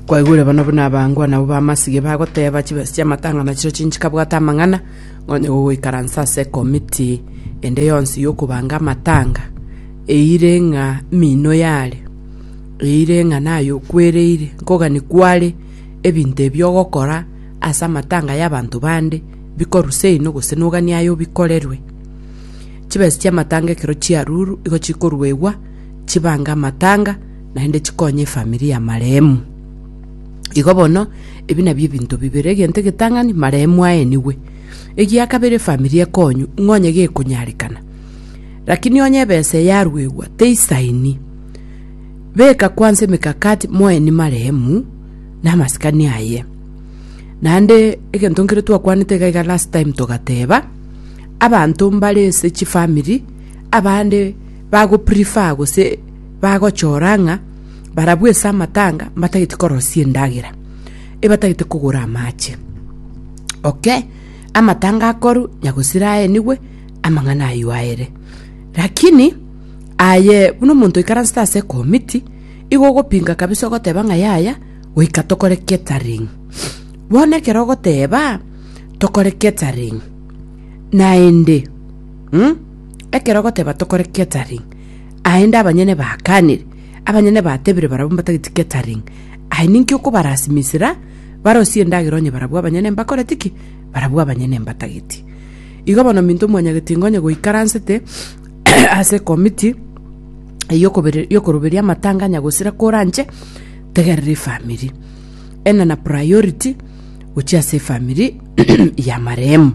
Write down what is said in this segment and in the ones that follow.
Kwaigure bono buna abango anabo b'amasige bagoteba chibesa chi'amatang'ana chiria chinchikabwate amang'ana, nonya gogoikaransa ase ekomiti ende yonsi y'okobanga amatanga, eire ng'a mino yaria, eire ng'a naye okwereire, nkogani kware ebinto ebi ogokora ase amatanga y'abanto bande bikorusa eino gose nogani aye obikorerwe. Chibesa chi'amatanga ekero chiarurwa igo chikoruegwa chibange amatanga Naende chikonya efamiri ya marehemu. Igo bono, ebi nabio ebinto bibere, egento egetang'ani, marehemu aenigwe. Egia kabere efamiri ekonywe, ng'a onye gekonyarekana. Rakini onye ebesa eye yaruegwa, teisaini. Beka kwansa emekakati moeni marehemu, na amasikani aye. Naende egento nkere twakwanete iga iga last time togateba, abanto mbare ase chifamiri, abande bago prefer gose. bagochora ng'a barabwo ase amatanga mbatagete korosia endagera, ebatagete kogora amache. Okay, amatanga akoru nyagosira aenigwe, amang'ana aywo aere. Rakini aye buna omonto oikaransete ase ekomiti, igo ogopinga kabisa ogoteba ng'a yaya, goika tokore catering. Bono ekero ogoteba tokore catering, naende, mh, ekero ogoteba tokore catering. Aende abanyene baakanire, abanyene batebire barabwo mbatageti catering, Aye ninki okobarasimisira barosie endagera onye barabwo abanyene mbakoreti ki? Barabwo abanyene mbatageti. Igo bono minto mwanyageti ngonya goikaransete ase committee eyio kobere yo koroberia amatanga anya gosira koranche tegerera efamiri. Enda na priority gochia ase efamiri ya marehemu.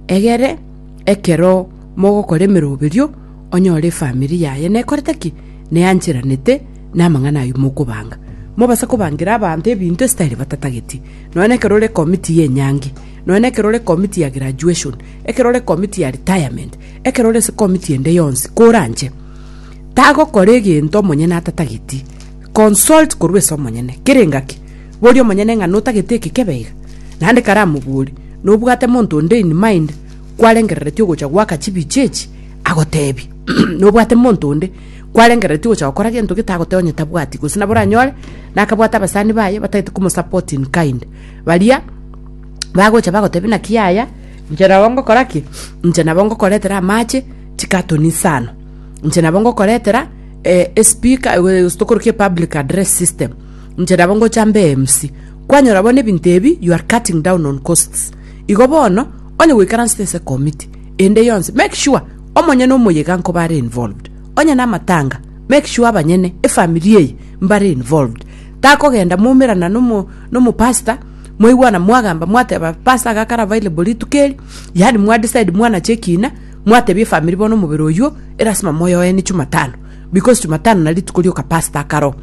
Egere ekero mogokora emeroberio onyore efamiri yaye nekorete ki? Neancheranete namang'ana ayio mokobanga. Mobase kobangira abanto ebinto estayire batatageti. Nonya nekero ore committe y'enyangi, nonya nekero ore committe ya graduation, ekero ore committe ya retirement, ekero ore ase committe ende yonsi, koranche. Tagokora egento omonyene atatageti. Consult korwa ase omonyene. Kera engaki, boria omonyene ng'a notagete eke kebe iga? Naende karamobori, nobwate monto onde in mind, kwarengereretie ogocha goaka chibicha echi, agoteebie, Nobwate monto onde kwarengereretie ogocha gokora gento gete agoteeba onye tabwati, gose nabo oranyore nakabwate abasani baye batagete komosupport in kind. Baria bagocha bagoteebia naki yaya, inche nabo ngokora ki? Inche nabo ngokoretera amache, chikatoni isano. Inche nabo ngokoretera eh, espeaker eh, gose tokorokia epublic address system. Inche nabo ngocha mbe MC. Kwanyora bono ebinto ebi, you are cutting down on costs. Igo bono, Onye gwaikaransete ase ekomiti ende yonsi, make sure omonyene omoyega nkoba are involved. Onye namatanga, make sure abanyene, efamiri eye, mbare involved. Takogenda mwaumerana nomo nomopastor, mwaigwana mwagamba mwateba pastor iga akare available rituko eri, yaani mwadecide mwanache ekina, mwatebia efamiri bono omobere oywo erasima moyoeni chumatano, because chumatano nari rituko rioka pastor akaro.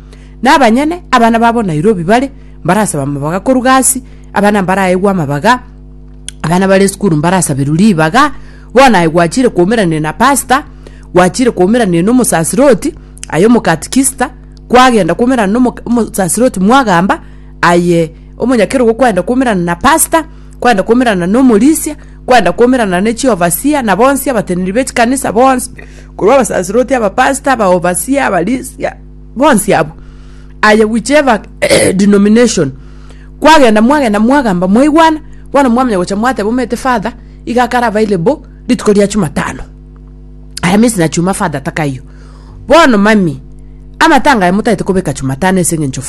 Nabanyene, abana babo Nairobi bare, mbarasaba amabaga koru gasi, abana mbaraegwe amabaga, abana bare esukuru mbarasaberwe ribaga bono aye gwachire kwaumerania na pasta gwachire kwaumerania na omosasiroti aye omokatikista kwagenda kwaumerana na omo- omosasiroti mwagamba aye omonyakerogo kwagenda kwaumerana na pasta kwagenda kwaumerana na omorisia kwagenda kwaumerana na chiovasia na bonsi abateneneri be chikanisa bonsi korwa abasasiroti abapasta abaovasia abarisia bonsi abwo aye whichever denomination kwagenda mwagenda mwagamba mwaigwana bono mwamanya gocha mwateba omete father iga akare available rituko ria chumatano aya means na chuma father takaiyo bono mami amatanga aya motagete kobeka chumatano ase eng'encho fa